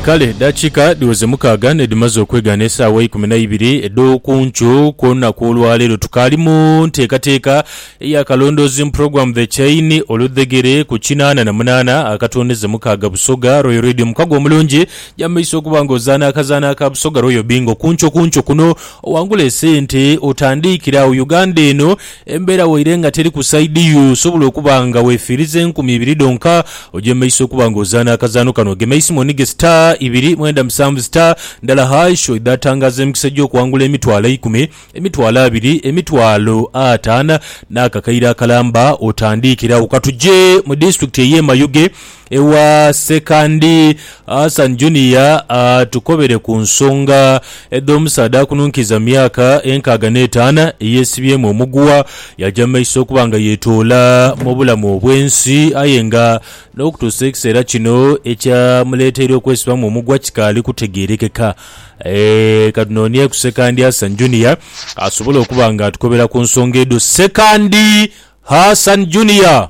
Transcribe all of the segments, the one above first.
Kale edaakiika dhiweze mukaaga nh'edhimaze okwegaana esaawa eikumi na ibiri edh'oku nkyo ku lunaku olwa leero, tukaali mu nteekateeka eya Kalondoozi mu Pulogulaamu The Chain, Oludhegere, ku kinaana na munaana akatondeze mukaaga Busoga Royal Radio. Mukago omulungi, ja mu maiso okuba nga ozaana akazaanho aka Busoga Royal Bingo. Ku nkyo ku nkyo kuno owangule esente otandiikire agho Uganda eno Embeera waire nga teri ku saidi yo, osobola okuba nga wefiiriza enkumi ibiri dhonka. Ojemeisa okuba nga ozaana akazaano kano. Gemeisa mu onige star ibiri mwenda musanvu star ndala hash oidhe atangaaza emikisa gy'okuwangula emitwalo eikumi, emitwalo abiri, emitwalo ataana n'akakaire akalamba otandiikiragho. Ka tuje mu disitulikiti ey'e Mayuge Ewa Sekandi Hassan Junior atukobere ku nsonga edh'omusaadha akununkiza myaka enkaaga n'etaana eyeesibyemu omuguwa yaja mu maiso okuba nga yeetoola mu bulamu obw'ensi aye nga n'okutuusa ekiseera kino ekyamuleeteire okwesibamu omugwa kikaali kutegeerekeka. Katunonieku Sekandi Hassan Junior asobole okuba nga atukobera ku nsonga edho. Sekandi Hassan Junior!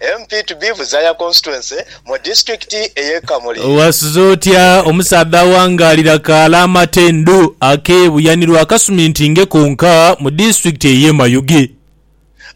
MP to be Buzaya Constituency mu Disitulikiti ey'e Kamuli. Owasiza otya omusaadha awangaalira kaala amatendhu ake Buyanirwa akasuminti nge konka mu disitulikiti ey'e Mayuge?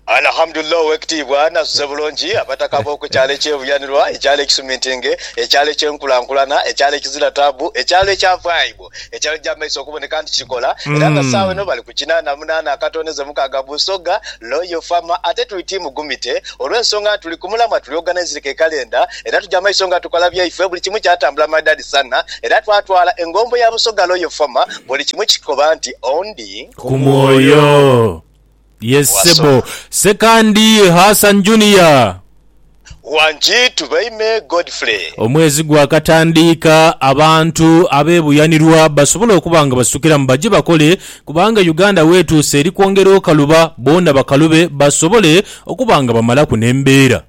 Alhamdulillah Owekitiibwa nasuze bulungi abataka b'oku kyalo eky'e Buyanirwa, ekyalo ekisuminti nge ekyalo eky'enkulankulana, ekyalo ekizira taabu, ekyalo ekyavaaibwa. ekizibu ekyali gy'amaiso okuboneka nti kikola era nga sawa eno bali ku kinaana munaana akatondeze mukaaga Busoga Loyal Farmer ate tuli tiimu Gumite olw'ensonga nti tuli ku mulamwa tuli organised ke kalenda era tugya maiso nga tukola byaife buli kimu kyatambula maridadi sana era twatwala engombo ya Busoga Loyal Farmer buli kimu kikoba nti ondi ku mwoyo. Yes ssebo. Wasoma. Sekandi Hassan Junior. Wangi Tubaime Godfrey. Omwezi gwakatandiika abantu abeebuyanirwa basobole okuba nga basitukiramu baje bakole kubanga Uganda weetuuse eri kwongera okaluba boona bakalube basobole okuba nga bamalaku n'embeera.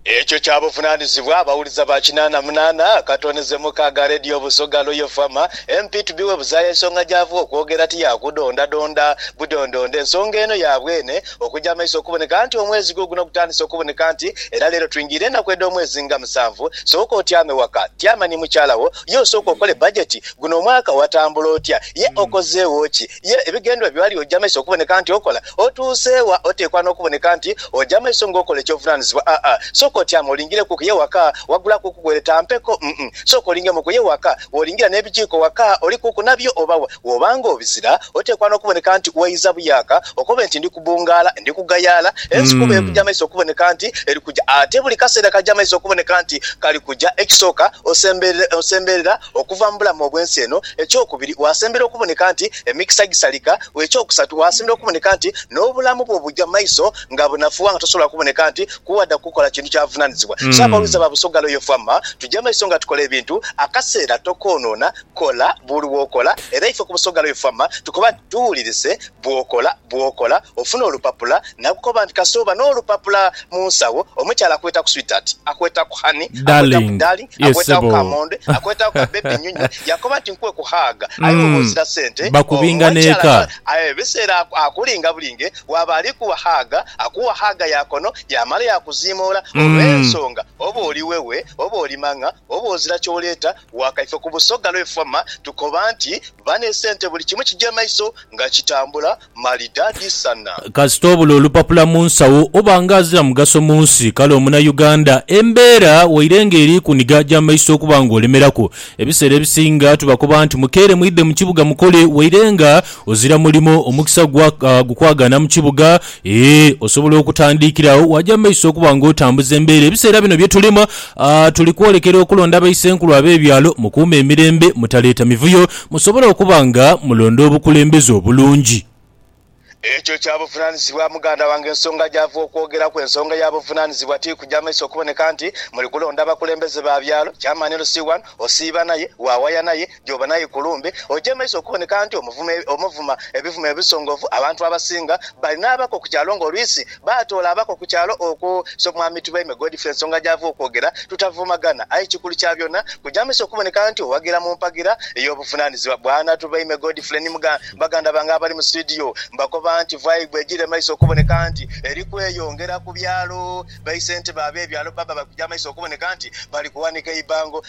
Ekyo kya buvunaanizibwa abawuliza ba kinaana munaana akatoonheze mukaaga Radio Busoga Royal Fama MP to be webuzaaya ensonga gy'ava okwogera ti ya kudondadonda budondonda ensonga eno ya bwene okugya amaiso okuboneka nti omwezi guuguno gutandise okuboneka nti era leero twingiire enaku edh'omwezi nga musanvu sooka otyame waka tyama ni mukyala wo ye osooke okole bajeti guno omwaka watambula otya ye okozeewo ki Ye ebigendererwa byo ali oja maiso okuboneka nti okola? Otuuse wa? Oteekwa n'okuboneka nti oja maiso ng'okola eky'obuvunaanyizibwa? Aa-a. Sooka otyame olingireku ku ye waka. Wagulaku ku gweere ta mpeko. Um-um. Sooka olingemu ku ye waka. W'olingira n'ebijiiko waka, olikuku nabyo oba wa? W'oba ng'obizira, oteekwa n'okuboneka nti weidha buyaaka okobe nti ndi kubungaala, ndi kugayaala. Ensi kuba ekuja maiso okuboneka nti eri kuja. Ate buli kaseera kaja maiso okuboneka nti kali kuja. Ekisooka, osemberera, osemberera okuva mu bulamu obw'ensi eno. Eky'okubiri, waasembera okuboneka nti emikisa gisalika. Eky'okusatu, waasembera okuboneka nti n'obulamu bwo buja maiso nga bunafuwa nga tosobola kuboneka nti kuwadha kukola kintu kya buvunanizibwa. So abawulize ba Busoga Royal Fama, tuja maiso nga tukola ebintu, akaseera tokoonona, kola buli wokola era ife ku Busoga Royal Fama tukoba nti tuwulirise bwokola bwokola ofuna olupapula Nakukoba nti Kasooba n'olupapula mu nsawo, omukyala akwetaku sweetheart, akwetaku honey, akwetaku Darling, darling, ye akwetaku ssebo. kamonde, akwetaku ka baby nyunyu, yakoba nti nkuwe ku hug aye bwoba Mm, ozira sente, bakubinga omukyala n'eka. aye ebiseera aku, akulinga bulinge, waaba ali kuwa hug, akuwa hug ya kono yaamala yakuziimoola Mm. olw'ensonga oba oli wewe, oba oli mang'a, oba ozira ky'oleeta waka. Ife ku Busoga lw'e Fwama tukoba nti bane sente buli kimu kigya maiso nga kitambula Malidadi sana. Kasita obula olupapula mu nsawo oba nga azira mugaso mu nsi. Kale omuna Uganda embeera waire nga eri kuniga gya maiso okuba nga olemeraku. Ebiseera ebisinga tubakoba nti mukeere mwidhe mu kibuga mukole waire nga ozira mulimo omukisa gwa gukwagaana mu kibuga eeh osobola okutandiikira agho waja mu maiso okuba nga otambuza embeera. Ebiseera bino bye tulimu aah tuli kwolekera okulonda baisenkulu abe byalo mukuume emirembe mutaleeta mivuyo. Musobole okuba nga mulonda obukulembeze obulungi. Ekyo kya buvunaanyizibwa, muganda wange. Ensonga gyava okwogeraku, ensonga ya buvunaanyizibwa ti kugya maiso kuboneka nti muli kulonda bakulembeze ba byalo. Chairman LC wano, osiiba naye, waawaya naye, gy'oba naye ku lumbe, ogye maiso okuboneka nti omuvuma, omuvuma ebivumo ebisongovu. Abantu abasinga bali n'abako ku kyalo ng'oluisi. Baatoola abako ku kyalo okwo, so Mwami Tubeime Godfrey ensonga gy'ava okwogera tutavumagana. Aye ekikulu kya byona, kujamisa okuboneka nti owagira mu mpagira ey'obuvunaanizibwa. Bwana Tubeime Godfrey ni mugha baganda bange abali mu situdiyo, mbakoba nti vai bwegire mu maiso okuboneka nti eri kweyongera ku byalo, baise nti ba ab'ebyalo baba bali kuja mu maiso okuboneka nti bali kuwanika eibango.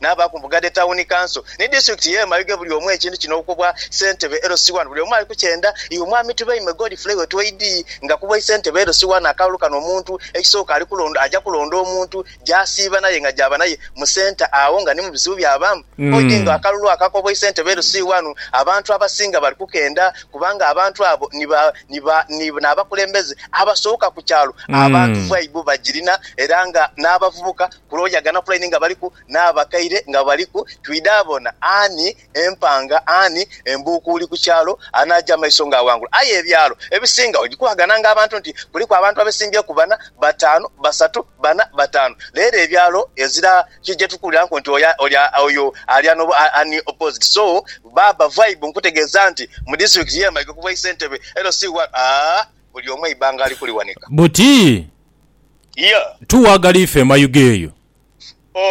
n'abaaku mbuga dhe Tawuni Kanso ni Disitulikiti y'e Mayuge buli omu ekintu kino okubwa Ssentebe LC wano buli omu ali kukyenda iwe Mwami Tubeime Godfrey Wetweidi nga kubwa Issentebe LC wano akalulu kano omuntu ekisooka ali kulonda aja kulonda omuntu gy'asiiba naye nga gy'aba naye mu Centre agho nga ni mu bizibu by'abaamu odi nga akalulu ako akobwa Issentebe LC wano abantu abasinga bali kukenda kubanga abantu abo ni ba ni ba ni n'abakulembeze abasooka ku kyalo abantu vaibu bagirina era nga n'abavubuka Kuloya ganapulaini nga baliku, n'abakaire nga baliku, twidha bona ani empanga, ani embuukuuli ku kyalo anaaja amaiso ng'awangula. Aye ebyalo ebisinga ogikubagana ng'abantu nti kuliku abantu abesimbyeku bana, bataanu, basatu, bana, bataanu. Leero ebyalo ezira ki gye tukuwuliraku nti oyo, oyo ali ghano ani opposite. So, baaba Vibe nkutegeeza nti mu disitulikiti y'e Mayiga ku bwa Isentebe, LC1, aa, buli omu eibaanga alikuliwanika. Buti Yeah. Tu wagala ife emayuge eyo.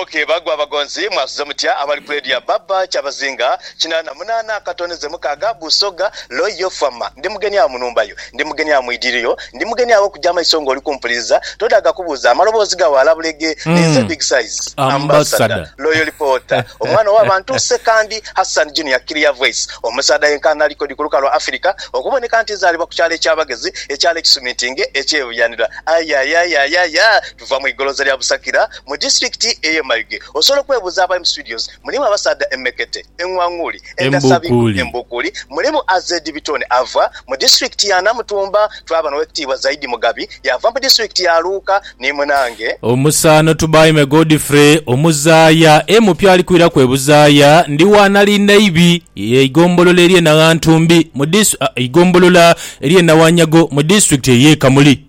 Ok bagu abagonzi mwasuze mutya abali kwedya baba kyabazinga kinana munana akatoneze mukaga busoga loy yo fama ndi mugeni agho munumba yo ndi mugeni agho mwidiliro yo ndi mugeni agho okuja amaiso nga oli kumpuliliza todaga kubuza amaloboozi gagho alabulege ninze big size ambassador loy reporter omwana owa bantu sekandi hassan junior clear voice omusadha yenka anali kodi kuluka lwa afirika Okuboneka nti nzaalibwa ku kyalo eky'abagezi, ekyalo ekisumintinge eky'e Buyanira. Aye, aye, aye, aye, aye! Tuva mu igoloza lya Busakira, mu disitulikiti ey'e Mayuge. Osobola okwebuuza abali mu situdios, mulimu abasaadha emmekete, eng'wang'uuli, endhasabiku, embuukuuli. Mulimu AZ Bitone ava mu disitulikiti ya Namutumba. Twaba n'Owekitiibwa Zaidi Mugabi yaava mu disitulikiti ya Luuka ni munange. Omusaano Tubaime Godfrey Omuzaaya, e Mupya alikwiraku e Buzaaya. Ndi wa nali naibi. Eigombolola ery'e Naghantumbi mu dis Eigombolola ery'e Nawanyago mu disitulikiti ey'e Kamuli.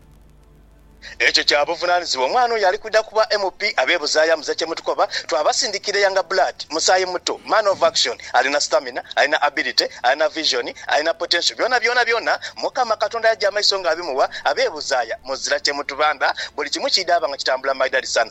Ekyo kya buvunanizibwa omwana oyo ali kwidha kuba MP abebuzayo amuze kyemutukoba twabasindikira younger blood musayi muto man of action alina stamina alina ability alina vision alina potential byona byona byona mukama katonda yaja amaiso nga abimuwa abebuzaya muzira kyemutubandha buli kimu kidaba nga kitambula maidali san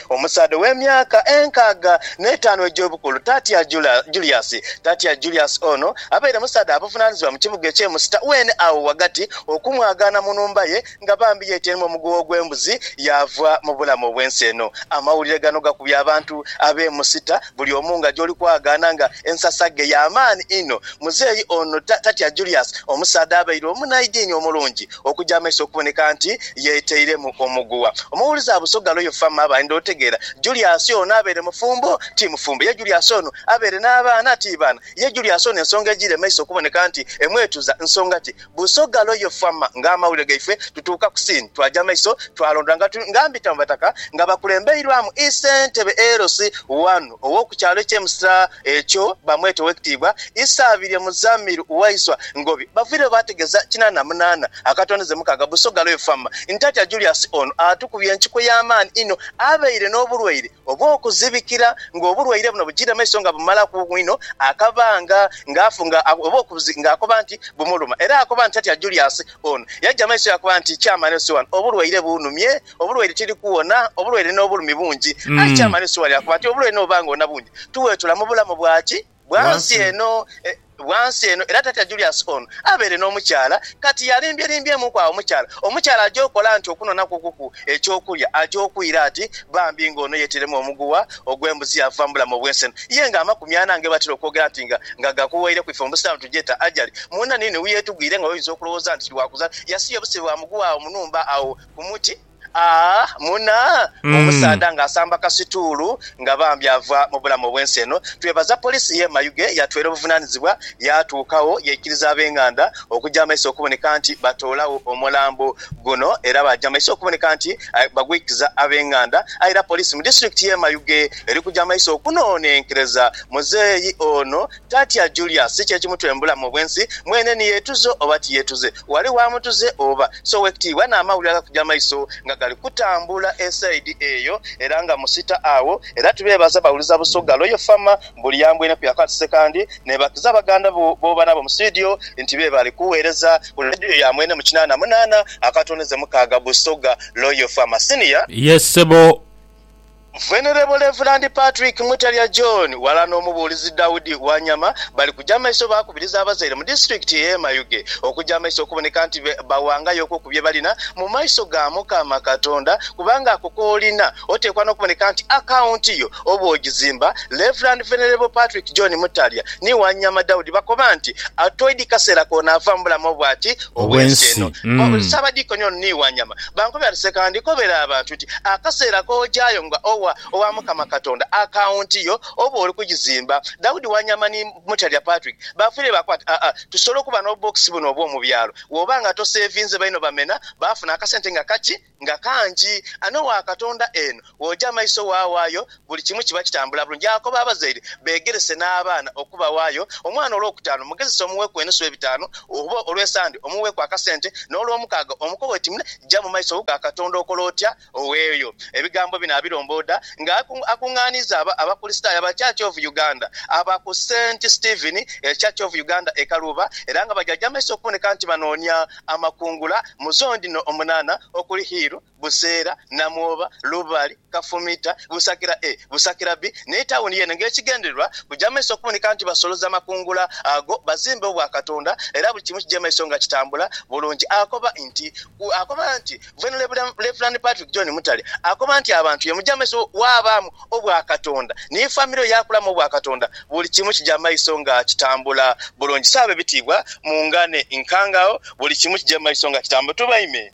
Omusaadha ow'emyaka enkaaga n'etaanu egy'obukulu, Tatya Julius. Tatya Julius ono abaire musaadha abuvunaanizibwa mu kibuga eky'e Musita weene agho ghagati, okumwagaana mu nhumba ye nga bambi yeeteiremu omuguwa ogw'embuzi yaava mu bulamu obw'ensi eno. Amawulire gano gakubye abantu ab'e Musita buli omu nga gy'oli kwagaana nga ensasaghe ya maani inho. Muzeeyi ono Tatya Julius omusaadha abaire omunhaidini omulungi Okuja amaiso okuboneka nti yeteiremu omuguwa. Omuwulize Abusoga Royal Farmer aba ayendha otegeera Julius ono abeere mufumbo ti mufumbo, ye Julius ono abeere n'abaana ti baana, ye Julius ono ensonga ejiire maiso okuboneka nti emwetuza nsonga ki? Busoga Royal Farmer nga amawulire gaife tutuuka ku scene twaja amaiso twalondola nga tuli nga mbita mu bataka nga bakulembeirwamu Ii Ssentebe LC1 ow'okukyalo ekye Msra Ekyo bamweta owekitiibwa Isaabirye Muzamir Waiswa Ngobi bavaireyo baategeza kinaana na munaana akatondeze mukaaga Busoga Royal Farm nti atya Julius ono atukubye enkiko y'amaani inho abaire n'obulwaire obw'okuzibikira ng'obulwaire buno bujiira maiso nga bumalaku inho akabanga ng'akoba nti bumuluma era akoba nti atya Julius ono yaja maiso yakoba nti Chairman Osiwano obulwaire buunumye Obulwaire tiri kuwona, obulwaire n'obulumi bungi. Aye ky'amanhi sua lya kuba nti obulwaire n'obuba nga wona bungi, tuwetula mu bulamu bwa ki? Bwa nsi eno. Bwa nsi eno. Era Tatya Julius ono abaire n'omukyala. Kati yalimbyelimbyemuku agho omukyala. Omukyala aja okola nti okunonhakukuku eky'okulya. Aja okwira ati bambi nga ono yeteiremu omuguwa ogw'embuzi yaavuba mu bulamu obw'ensi eno. Ye nga amakumi ana nga bwebatera okwogera nti nga nga gakuweireku ife mu busiraamu tugyeta ajali. Mwona ni ni weyetugwire nga oyinza okulowooza nti tiri wa kuzaala. Yasiya obusibe bwa muguwa agho mu nhumba agho. Ku muti aa muna omusaadha nga asamba kasituulu nga bambi ava mu bulamu obwensi eno. Twebaza poliisi ye Mayuge yatweela obuvunanizibwa yatuukawo yaikiriza abenganda okuja maiso okuboneka nti batoolawo omulambo guno era baja maiso okuboneka nti bagwikiza abenganda aye era poliisi mu disitulikiti ye Mayuge eri kuja maiso okunonenkereza muzeeyi ono Tatya Julia, si ky'ekimutwe mu bulamu obw'ensi. Mwene ni yeetuze oba tiyeetuze, ghali w'amutuze oba. Si owekitiibwa n'amawulire agakuja amaiso nga gali kutambula esaidi eyo era nga musita agho. Era tubeebaza bawuliza Busoga Royal Fama mbu liyambwene ku Yakati Ssekandi neebakiza baganda bo booba nabo mu situdiyo nti be bali kugheereza ku leediyo ya mwene mu kinaana munaana akatondeze mukaaga Busoga Royal Fama. Senior. Yes sebo. Venerable Reverand Patrick Mutalya John ghalala n'omubuulizi Daudi Wanyama bali kuja maiso baakubiriza abazaire mu disitulikiti y'e Mayuge okuja maiso okuboneka nti bawangayoku ku bye balina mu maiso ga Mukama Katonda kubanga ako k'olina oteekwa n'okuboneka nti akawunti yo oba ogizimba. Rev. Venerable Patrick John Mutalya ni Wanyama Daudi bakoba nti atoidi kaseera koonaava mu bulamu obwati obw'ensi eno. Ssaabadiikoni ono ni Wanyama bankubira nti, Sekandi kobera abantu nti, Akaseera k'ojayo nga owa Owamukama Katonda akaunti yo oba oli kugizimba. Daudi Wanyama ni Mutalya Patrick baafiire baakoba nti, Aa, tusobola okuba n'obubookisi buno obw'omu byalo. Wooba nga toseevinze baino bamena baafuna akasente nga kaki? Nga kangi! Ani owa Katonda eno? Bw'oja amaiso waawaayo, buli kimu kiba kitambula bulungi. Yaakobo abazaire beegerese n'abaana okubawaayo. Omwana olwokutaanu mugezese omuweeku enusu y'ebitaanu, oba Olw'esande omuweeku akasente, n'Olwomukaaga omukowe oti mune. Ja mu maiso ga Katonda okole otya? Oweeyo ebigambo bino abirombooda nga akungaaniiza Abakulisitaayo aba Church of Uganda aba ku Saint Stephen Church of Uganda e Kaluuba era nga bajaja amaiso okuboneka nti banoonia amakungula mu zooni dhino omunaana okuli Hiiru, Buseera, Namwoba, Lubali, Kafumita, Busakira A, Busakira B ni tawuni yeene ng'ekigendererwa kuja mu maiso okuboneka nti basoloza amakungula ago bazimbe Obwakatonda era buli kimu kije mu maiso nga kitambula bulungi. Akoba nti Akoba nti Venerable Reverend Patrick John Mutale akoba nti abantu ye muja mu maiso waabaamu Obwakatonda ni famire yo yaakulamu Obwakatonda buli kimu kija mu maiso nga kitambula bulungi. Saabe bitiibwa mungane nkangagho buli kimu kije mu maiso nga kitambula. Tubaime.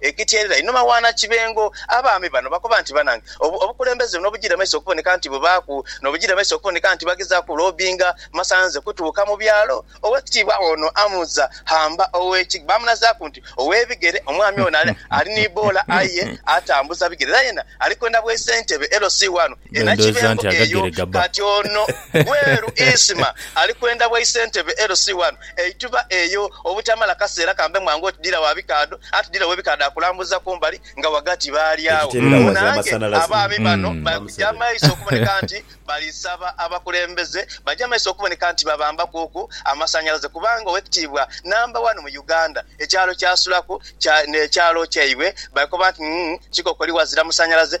Ekityerera inho Mawaana Kibengo. Abaami bano bakoba nti banange obukulembeze buno obujiira maiso okuboneka nti bubaaku nobujiira maiso okuboneka nti bagezaaku ku lobbinga masanze kutuuka mu byalo. Owekitiibwa ono Amuza Hamba ow'Ekigga bamunazaaku nti owebigere omwami ono ali ni boola aye atambuza bigere era yena ali kwenda bwa isentebe LC wano e Nakibengo eyo. Kati ono Gweru Isma ali kwenda bwa isentebe LC wano. Eithuba eyo obutamala kaseera kambe mwangu oti dira wa bikaadho, anti dira ow'ebikaadho akulambuza ku mbali nga ghagati baali agho. Awo naange abaami bano bali kuja maiso okuboneka nti bali saba abakulembeze, baja maiso okuboneka nti babambakuuku amasanhalaze kubanga owekitiibwa namba wani mu Uganda ekyalo kyasulaku kya n'ekyalo kyaibwe bakoba nti, Ng'ng kikokoli ghazira musanhalaze.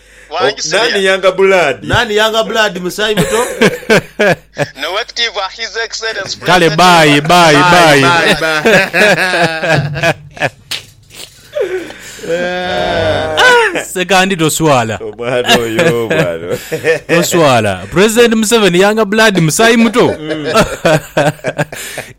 Nani Younger Blood? Nani Younger Blood musaayi muto? Kale bye bye. Sekandi toswala. Omwana oyo bwana. Toswala. President Museveni Younger Blood musaayi muto. Mm.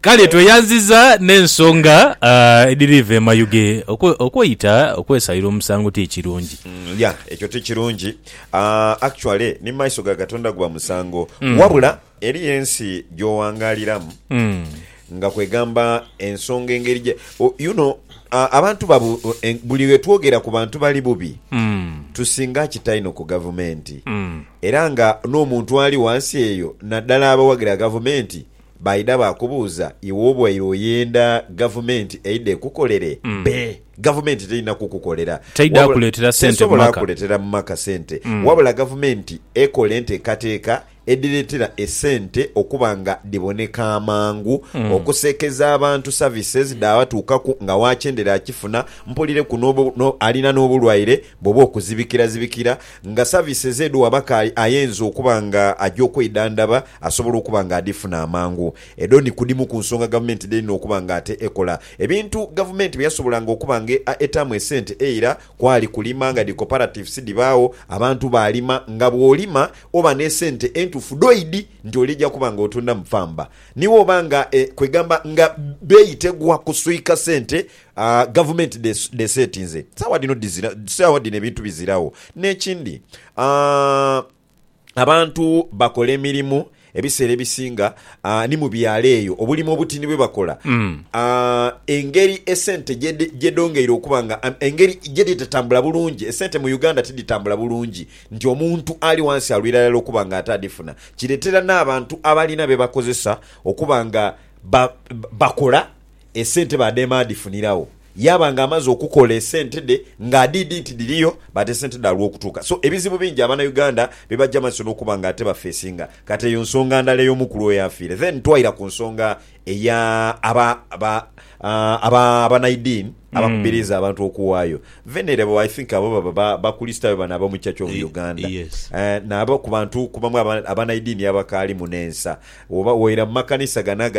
Kale tweyanziza n'ensonga uh, ediriva emayuge okweyita okwesalira omusango ti kirungi. Yeah ekyo tikirungi uh, actually ni maiso ga Katonda guba musango mm. wabula eriyo ensi gyowangaliramu mm. nga kwegamba ensonga engeri gye oh, you know uh, abantu babu en, buli wetwogera ku bantu bali bubi mm. tusinga kitaino ku gavumenti mm. era nga n'omuntu ali wansi eyo naddala abawagira gavumenti Baidha baakubuuza, iwe obaire oyenda Gavumenti eidhe ekukolere? Be, Gavumenti terina kukukolera. Teidha Wabula, kuleetera sente mu tesobola maka. kuletera mu maka sente. Wabula Gavumenti ekola enteekateeka edhireetera esente okuba nga dhiboneka amangu, okuseekeza abantu services dhaabatuukaku nga wakyendera akifuna, mpulire ku n'obu, no, alina n'obulwaire bwoba okuzibikirazibikira, Nga saviises edhuwa abakaayi ayeenza okuba nga aja okweidhandhaba asobola okuba nga adhifuna amangu. Edho ni ku dhimu ku nsonga gavumenti dh'erina okuba nga ate ekola. Ebintu gavumenti bye yasobolanga okuba nga eetaamu esente eira kwali kulima nga dhi cooperatives dhibaagho abantu baalima nga bw'olima oba n'esente entuufu dhoidi nti oli oja kuba nga otundamu pamba. Ni woba nga e kwegamba nga bbeeyi tegwa kuswika sente A Gavumenti dheseetinze sawa dhino dhizira sawa dhino ebintu biziragho. N'ekindi a abantu bakola emirimu ebiseera ebisinga a ni mu byalo eyo obulimi obutini bwe bakola a engeri esente gye dhongeire okuba nga engeri gye dhitatambula bulungi. Esente mu Uganda tidhitambula bulungi nti omuntu ali wansi alwira irala okuba nga ate adhifuna. Kireetera n'abantu abalina bye bakozesa okuba nga bakola Esente baadheema adhifuniragho yaaba nga amaze okukola esente dhe nga adhiidhi nti dhiriyo but esente dhalwa okutuuka so ebizibu bingi abana Uganda bibaja maiso nokuba nga ate bafesinga kati eyo nsonga ndala ey'omu kulwa oyo afiire then twaira ku nsonga eya aba aba aba abanaidini abakubiriiza abantu okuwaayo venerable I think abo baba ba bakulisitayo bano abomu church of Uganda naabo kubantu kubamu abanaidini abakaalimu nensa woba woira mumakanisa gano aga